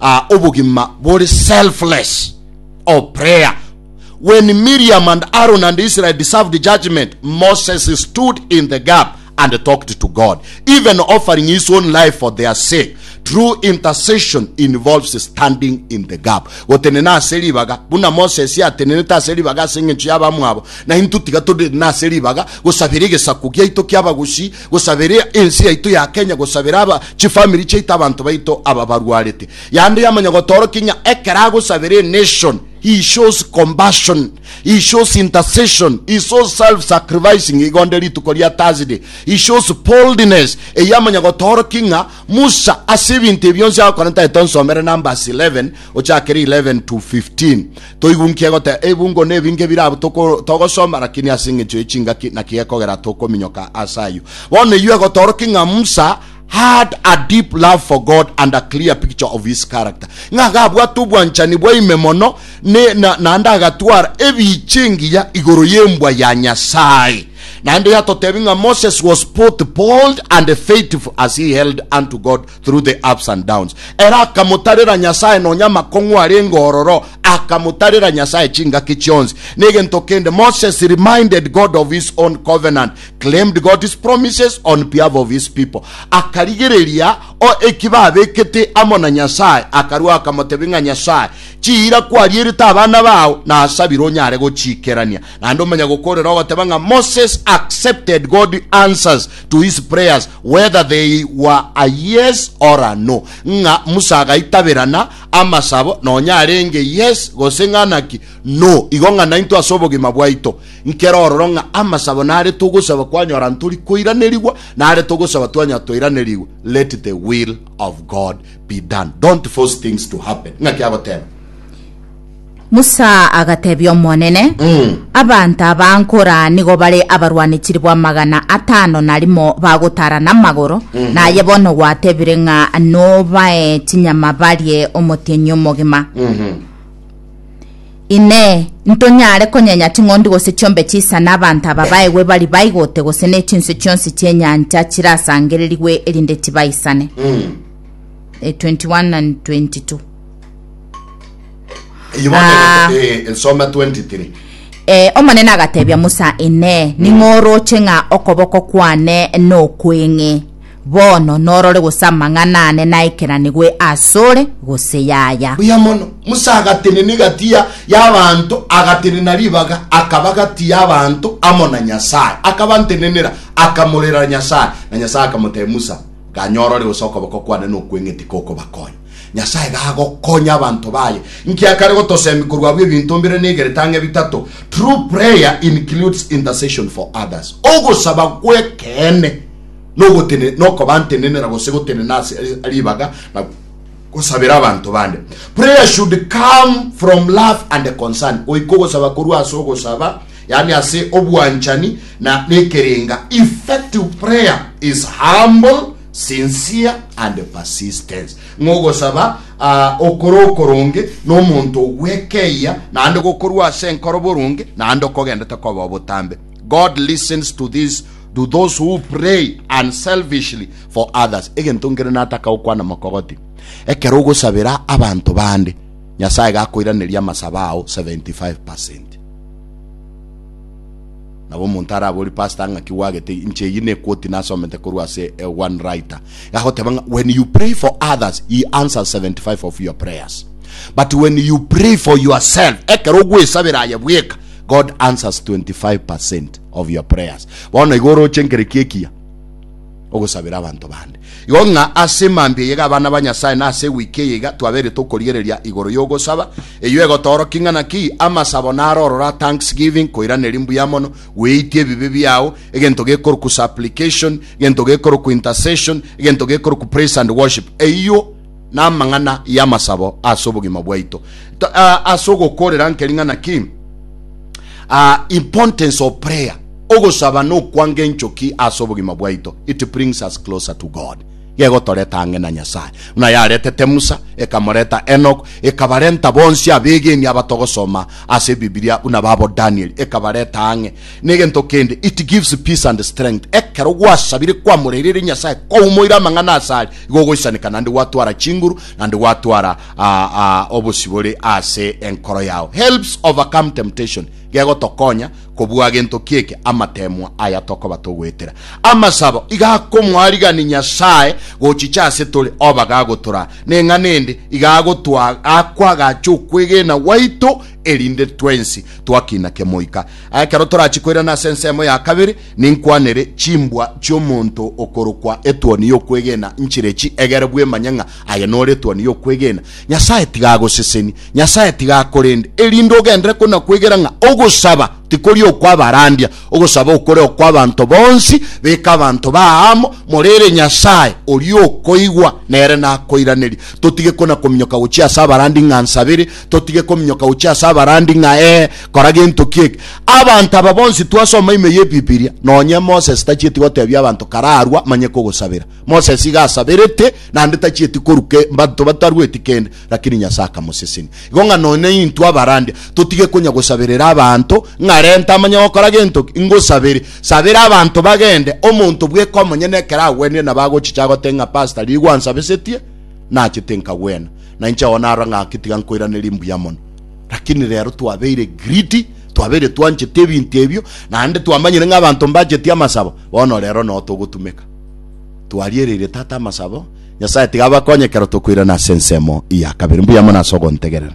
Ah, obogima bore selfless. Oh, prayer. When Miriam and Aaron and Israel deserved judgment, Moses stood in the gap and talked to God, even offering his own life for their sake. True intercession involves standing in the gap. Gotenena ase ribaga, buna Moses yatenenete ase ribaga ase eng'encho y'abamwabo, na intwe tiga tore nase ribaga gosabera egesaku giaito ki'abagusi Gosaberea ense yaito ya Kenya, gosabera aba chifamiri chiaito abanto baito aba barwarete. Yande yamanya gotorokia ng'a ekero agosabera enation, he shows compassion, he shows intercession, he shows self sacrificing igonde rituko ria Thursday, he shows boldness. Eye amanya gotorokia ng'a Musa ase ebinto ebionsi agokora ntaete onsomere Numbers 11 ochakere 11 to 15. Toigunkia goteba ebungo nebinge bire abwo togosoma, lakini ase engencho ye chingaki naki gekogera tokominyoka ase ayio. Bono eyio egotorokia ng'a Musa had a deep love for God and a clear picture of his character, ng'a iga abwate obwanchani bwa ime mono naende agatwara ebiicha engiya igoro y'embwa ya Nyasae. Naende yatotebi ng'a Moses was both bold and faithful as he held unto God through the ups and downs. Era akamotarera Nyasae nonya amakong'u arenge ororo, akamotarera Nyasae chingaki chionsi. Negento kende, Moses reminded God of his own covenant, claimed God's promises on behalf of his people. Akarigereria o eki babekete amo na Nyasae, akarua akamotebia ng'a Nyasae, chiira kwarierete abana bao nasabire onyare gochiikerania. Naende omanya gokoorera ogoteba ng'a Moses accepted God's answers to his prayers Whether they were a yes or a no, ng'a Musa agaitaberana amasabo nonya arenge yes gose ng'a naki no, igo ng'a naintwe ase obogima bwaito nkere ororo ng'a amasabo nare togosaba kwanyora ntori koiranerigwa, nare togosaba twanyora toiranerigwe, let the will of God be done, don't force things to happen, ng'aki agoteba. Musa agatebia Omonene, Abanto aba nkora nigo bare abarwani chilifu amagana atano na rimo bagotara namagoro, naye bono gwatebire ng'a nobae chinyama barie omotienyi omogima. Inee, ntonyare konyenya ching'ondi gose chiombe chisane abanto aba baegwe bari baigote gose ne chinswe chionsi chi'enyancha chirasangererigwe erinde tibaisane? Eh, 21 and 22. Eyio bono Ah. ego- eh, nsoma 23 Eh, omonene agatebia musa inee ning'oroche ng'a okoboko kwane nokweng'e bono norore gose amang'ana ane naikeranigwe asore gose yaya buya mono musa agatenena egati ya- y'abanto agatenena ribaga akaba gati y'abanto amo na nyasaye akabantenenera akamorera nyasaye na nyasaye akamotebia musa ganya orore gose okoboko kwane nokweng'e tikokobakonya Nyasae iga agokonya abanto baye. Inki akare gotosemia korwa abwo ebinto mbire na igere tang'e bitato? True prayer includes intercession for others. Ogosaba gw'ekeene nogotene nokobantenenera gose gotenena ase ribaga na gosabera abanto bande. Prayer should come from love and concern. Goika ogosaba korwa ase ogosaba, yaani ase obwanchani na nekerenga. Effective prayer is humble sincere and persistence, ng'a ogosaba aa okore okoronge nomonto ogwekeyia naende gokorua ase enkoro boronge naende okogendete koba obotambe. God listens to these to those who pray unselfishly for others. Egento nkere nataka gokwana mokogoti, ekero ogosabera abanto bande, Nyasae gakoiraneria amasabo ao 75%. Nabo omonto araborie pastor ng'aki gwagete inche eyio nekoti nasomete korwa ase eh, one writer agoteba ng'a when you pray for others he answers 75 of your prayers but when you pray for yourself ekero ogwesabera aye bweka God answers 25% of your prayers bono igo oroche nkereki ekiya ogosabera abanto bande. Igo ng'a ase mambia eyega abana ba Nyasae na ase ewiki eye iga twabeire tokorigereria igoro y'ogosaba, eyio egotoorokia ng'a naki amasabo naro orora thanksgiving, koiraneria mbuya mono, gweitia ebibe biao, egento gekorokwa supplication, egento gekorokwa intercession, egento gekorokwa praise and worship. Eyio. namang'ana y'amasabo ase obogima bwaito. To- ah, Ase ogokorera nke ring'ana ki? Ah, importance of prayer. Ogosaba nokwanga enchoki ase obogima bwaito. It brings us closer to God. Gegotoreta ang'e na Nyasaye. Buna yaretete Musa, ekamoreta Enoch, ekabarenta bonsi abegeni abatogosoma ase Bibilia buna babo Daniel, ekabareta ang'e. Negento kende, it gives peace and strength. Ekero gwasabire kwamoreireire Nyasaye koumoire amang'ana asare, igo ogoisaneka naende gwatwara chinguru naende gwatwara obosibore ase enkoro yao. Helps overcome temptation, gegotokonya kobua gento kieke amateemwa aya tokoba togoetera. Amasabo iga akomoarigani Nyasaye gochicha ase tore oba gagotoraa. Neng'ana ende iga agotwaa akwagache okwegena gwaito. erinde twensi twakina kemoika. Ekero torachie koirana ase ensemo ya kabere, ninkwanere chimbwa chi'omonto okorokwa etuoni y'okwegena nchire echi, egere bwemanye ng'a aye nore etuoni y'okwegena. Nyasae tiga agoseseni, Nyasae tiga akorende, erinde ogenderere konakwegera ng'a ogosaba tikori okw'abarandia, ogosaba okore okw'abanto bonsi. Beka abanto bao amo, morere Nyasae, oria okoigwa, nere nakoiranerie. Totige konakominyoka gochia ase abarandi ng'a nsabere, totige kominyoka gochia ase abarandi ng'a ee kora gento ki eke. Abanto aba bonsi twasoma ime y'Ebibilia, nonye Moses tachieti gotebia abanto kararwa manye kogosabera. Moses iga asaberete, naende tachieti koruka mbanto batarueti kende, lakini Nyasae akamosesenia. Igo ng'a nonye intwe abarandi totige konya gosaberera abanto ng'a renta amanye gokora gento ki, ngosabere, sabera abanto bagende, omonto bweka omonyene ekero agwenire nabo agochicha agote ng'a pastor rigwa ansabesetie, nachete nkagwena. Na inche oo narora ng'a gaki tiga nkoiranerie mbuya mono. Lakini rero twabeire greedy, twabeire twanchete ebinto ebio, naende twamanyire ng'a abanto mbacheti amasabo, bono rero noo togotumeka. Twariereire Tata amasabo, Nyasae tiga abakonye ekero tokoirana ase ensemo eye ya kabere. Mbuya mono ase ogontegerera.